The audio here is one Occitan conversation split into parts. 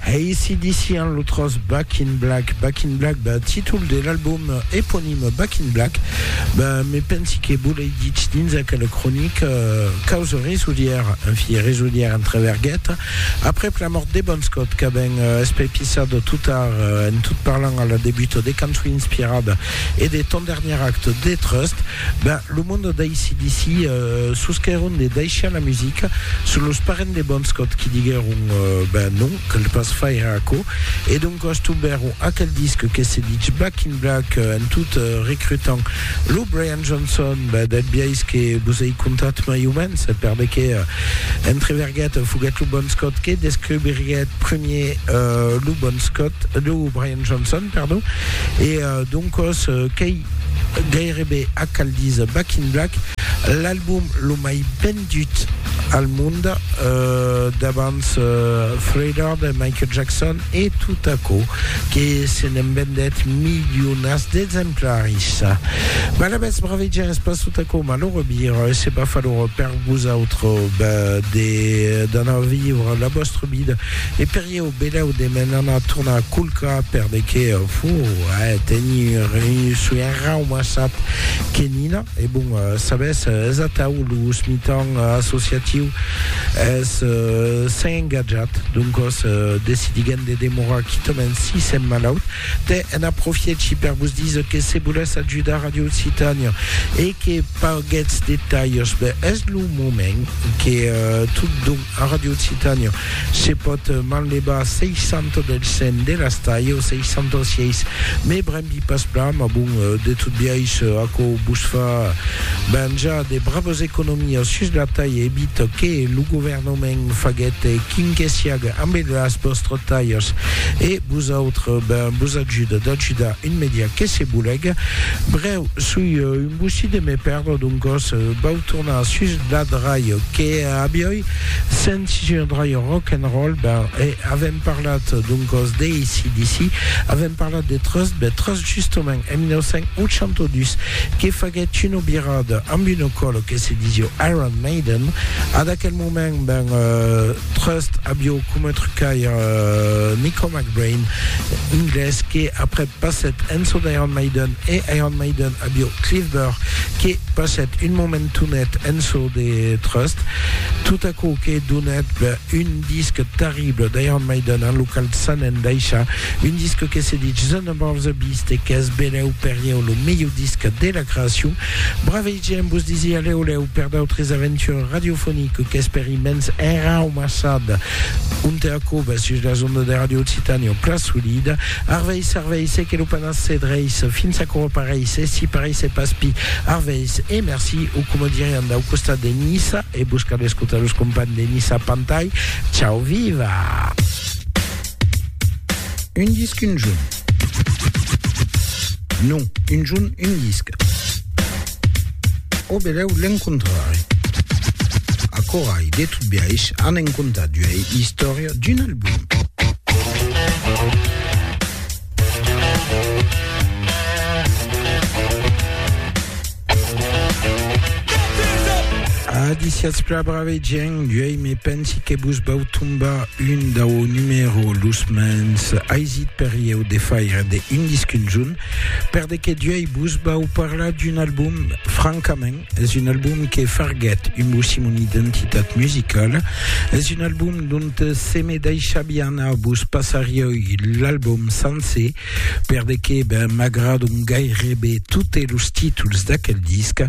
AC/DC an lo tros Back in Black. Back in Black, bah, títol de l'album eponim Back in Black, bah, me pensi que vos l'ai ditz dins aquela cronica, euh, caus resolièr, en fi, resolièr entre vergueta, aprèp la mòrt de Bon Scott, qu'avèn euh, espepissat tot tard, euh, en tot parlant a la debuta de cançon inspirada e de Ton dernier acte de Trust, Ben, lo monde d'ACDC sosquèron de daishar la musica, son los parents de Bon Scott qui diguèron ben non, cal pas faire aquò, e doncas tombèron aquel disc que se dich Back in Black en tot recrutant lo Brian Johnson, ben del biais que vos ei contat mai o mens, per de qué entreverguèt foguèt lo Bon Scott que descobriguèt premier lo Bon Scott, lo Brian Johnson, pardon, e doncas qu'ei. Gairebe a cal díser Back in Black, l'album lo mai vendut al mond, davants Thriller de Michael Jackson e tot aquò que se n'en vendèt milionats d'exemplaris. Mas alavetz, brave gent, es pas tot aquò malhorós vir, e se pas falhorós per vosautres de d'anar vivre la vòstra vida e per Ieu belèu de m'en anar tornar culcar per de que fo a tenir un soien raumassat que Nina e bon sabés es atau los mitan associatius es s'en engatjat doncòs decidiguem de demorar quitament si s'en malaut te en aprofièchi per vos diser que se volètz ajudar Radio Occitània e que paguètz de talhs ben es lo moment que tot don A Ràdio Occitània se pòt manlevar 600 del 100 de las talhas, 66, me brembi pas plan, mas bon, de tot biais, aquò vos fa venjar de bravas economias sus la talha, evit que lo governament faguèt quin que siaga ambe las vòstras talhas, e vosautres, ben, vos ajuda d'ajudar un media que se bolega. Brèu, soi un bossí de me perdre, doncòs vau tornar sus Blad Raio que avioi sentit un raio rock and roll ben e avèm parlat doncòs de ACDC avèm parlat de Trust ben Trust justament en 1982 que faguèt una birada amb una còlo que se disio Iron Maiden ad aquel moment ben Trust avió coma trucaire Nico McBrain inglés que après passèt en çò d'Iron Maiden e Iron Maiden Adio Cliff Burr, que passèt un momentonet en çò de trust, tot aquò que donèt un disc terrible d'Iron Maiden en lo qual s'an endaishat, un disc que se dich The Number of the Beast e qu'es belèu per ieu lo melhor disc de la creacion. Bravei gent, vos disi a lèu lèu per d'autres aventures radiofoniques qu'espèri immens enraumassada onte aquò, sus las ondas de Radio Occitània, o plan solida. Arveis, arveis, e que lo panas se dreis, fins aquò o pareis, e si pareis e pas pi, arveis, e merci, o coma dirián dau costat de Niça, e vos cal escotar los compagns de Niça Pantai, ciau viva! Un disc un junh. Non, un junh un disc. O belèu l'encontrarè. Aquò ai de tot biais an en compta d'uei istòria d'un album. Adiciatz pla brave gèn d'uei me pensi que vos vau tombar un dau numero los mens aisit per ieu de faire de un disc un junh Per de que duei vos vau parlar d'un album, francament, es un album que farguèt un bocí mon identitat musicala, es un album dont se me daishavi anar vos passarioi l'album sancer, per de que ben m'agradon gairebe totes los títols d'aquel disc.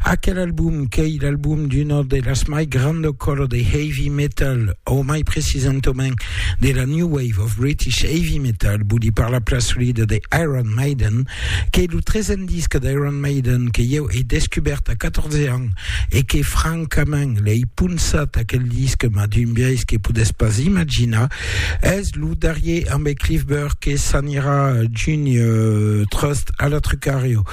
Aquel album qu'ei l'album d'una de las mai granda cola de heavy metal, o mai precisentament dera New Wave of British Heavy Metal, voli parlar pla solida de Iron Maiden, qu'ei lo tresen disc d'Iron Maiden que ieu ei descubèrt a 14 ans e que francament l'ei ponçat aquel disc mas d'un biais que podètz pas imaginar, es lo darrier ambe Cliff Burke que s'anirà junh Trust a la Trucario.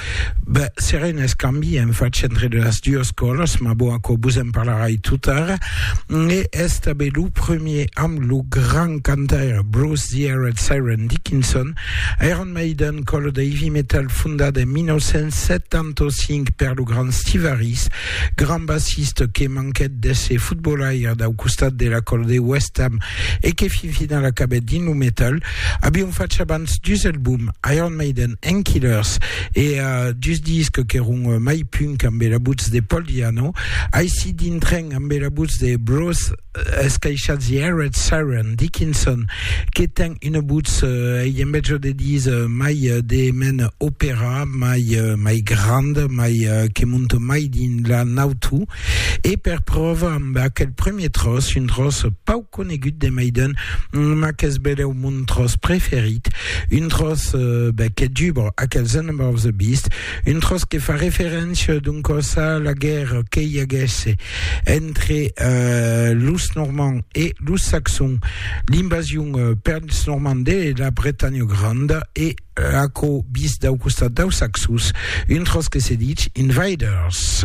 Ben, serà un escambi en fach entre de las duas còlas, ma bon, aquò vos en parlarai tot ara. E es tanben lo premier amb lo grand cantaire Bruce The Arid Siren Dickinson, Iron Maiden, còla de heavy metal fondada en 1975 per lo grand Steve Harris, grand bassista que manquèt d'èsser fotbolaire dau costat de la còla de West Ham e que fin final acabèt dins lo metal, Avion fach abans dus albums, Iron Maiden and Killers, e dus discs qu'èron mai punk ambe la votz de Paul Di'Anno. Aicí dintrèn ambe la votz de Bruce escaishat The Arid Siren, Dickinson, que ten una votz, ei en bèth jo de díser, mai de mena opèra, mai mai grand, mai que monte mai dins la nautu, e per pròva ambe aquel premier tròç, un tròç pauc conegut de Maiden, mas qu'es benlèu mon tròç preferit, un tròç ben que dubra aquel The Number of the Beast, un tròç que fa referéncia d'un còs a la guèrra que i aguèsse entre los Normands e los Saxons, l'invasion pels Normands de la Bretanha Granda e aquò vist dau costat daus Saxons, un tròç que se ditz Invaders.